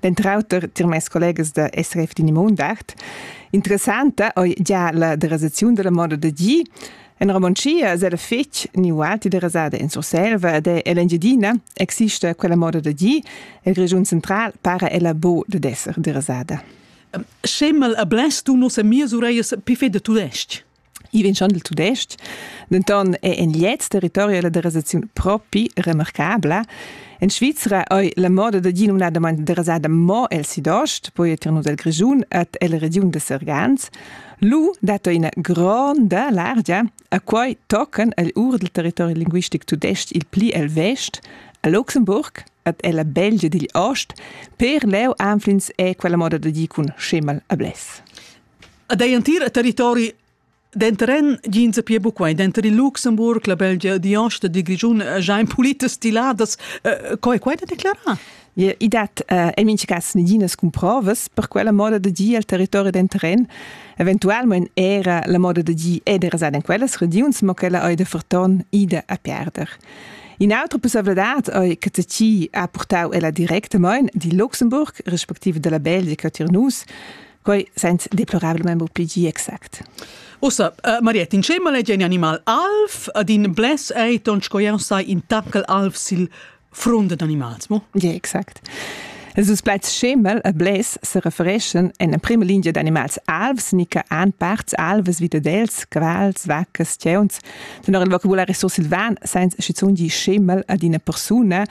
Denter auter tier mes collegas da SRF din Mondart. Interessanta ei gia la derasaziun dalla moda da gi. En Romontschia se da fetg ni ualti derasada in Surselva ed en Engiadina exista quella moda da gi e il regiun central para ella bo da esser derasada. Schemel a bless du nos amias ureias pi feda tudestg. I vegn schon dal tudestg, denton è en gliez territori la derasaziun propi remarcabla. En Svizra ei la moda da dir numnadamain derasada mo el sidost, poi etir nus el Grischun et el regiun de Sergans. Lu dat ina gronda largia a quai tocan el ur del territori linguistic tudestg il pli el vest, a Luxemburg et ella Belgia digl ost, per leu anflins è quella moda da dir cun schemal a bless. Ad ei entir territori denter en jeans a pia buca denter il Luxemburg, la Belgia, die Ost e die Grischun ein pulite stiladas. Co è quai da declarar? I dat uh, en mincha cas neginas cumprovas per quella moda de dir al territori d'entren. Eventualment era la moda de dir è de rasar in quellas regions, ma quella ei de forton ida a perder. In'altra possibilità ei che ci ha portau ella directamain di Luxemburg, respektive della Belgia, che tier nus Quei sens deplorabelmain mo pli gi exact. Ussa, uh, Mariette, in scema legge in animal alf, ad in bless ei ton sco jau sai in tackel alf sil front ad animals, mo? Ja, exact. Sus plaids Schemel e Bless se refereschen en la prima linea d'animals alvs, nica an parts alves vita dels, quals, vaccas, teuns. Tenor il vocabulari sursilvan, sens schizun di Schemel ad una persona,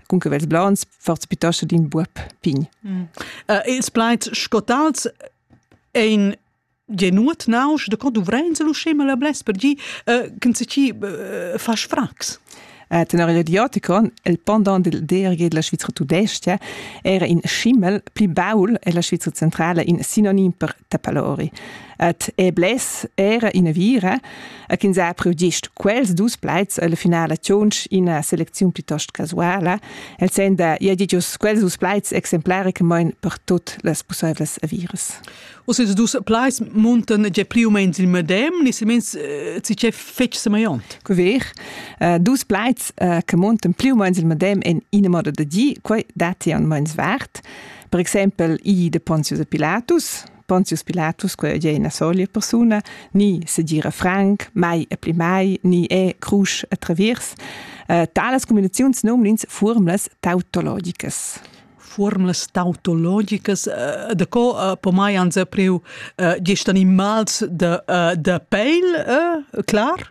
con que vels blonds, forz pitascha d'in buob pign. Mm. Uh, ils plaids scotals ein genuat nausch da co duvrein lu scema la bles per gi uh, can se ci uh, fas frax Eh, tenor il radioticon, il pendant del DRG della Svizzera tudesca era in schimmel pli baul e la Svizzera centrale in sinonim per tapalori. Et e bless era ina vira, a ch'ins ha priu gist quels dus plaids alla finala tschunch ina selecziun plitost casuala, el sen da ia di gius quels dus plaids exemplaricamain per tut las pussaivlas aviras. Us ils dus plaids muntan ge più o meno il medem, ni semens eh, ci c'è fetg semaiont. Co ver? Uh, dus plaids uh, che muntan più o meno il medem in ina moda da di, quei dati an meins vart. Per exempel, I de Pontius e Pilatus, Pontius Pilatus, quella è ina solia persona, ni segira franc, mai e pli mai, ni è crusch e traviers. Uh, talas combinaziuns nomnins formlas tautologicas formlas tautologicas uh, de co uh, po mai anze priu uh, gest animals de, uh, de peil, uh, clar?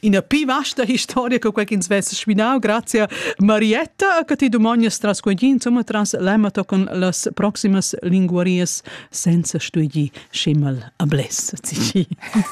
ina pi vasta historia che quei ch'ins vess sminau. Grazie Marietta, che ti domognas tras quegli, insomma, tras l'emato con las proximas linguarias senza studi schimmel a bless.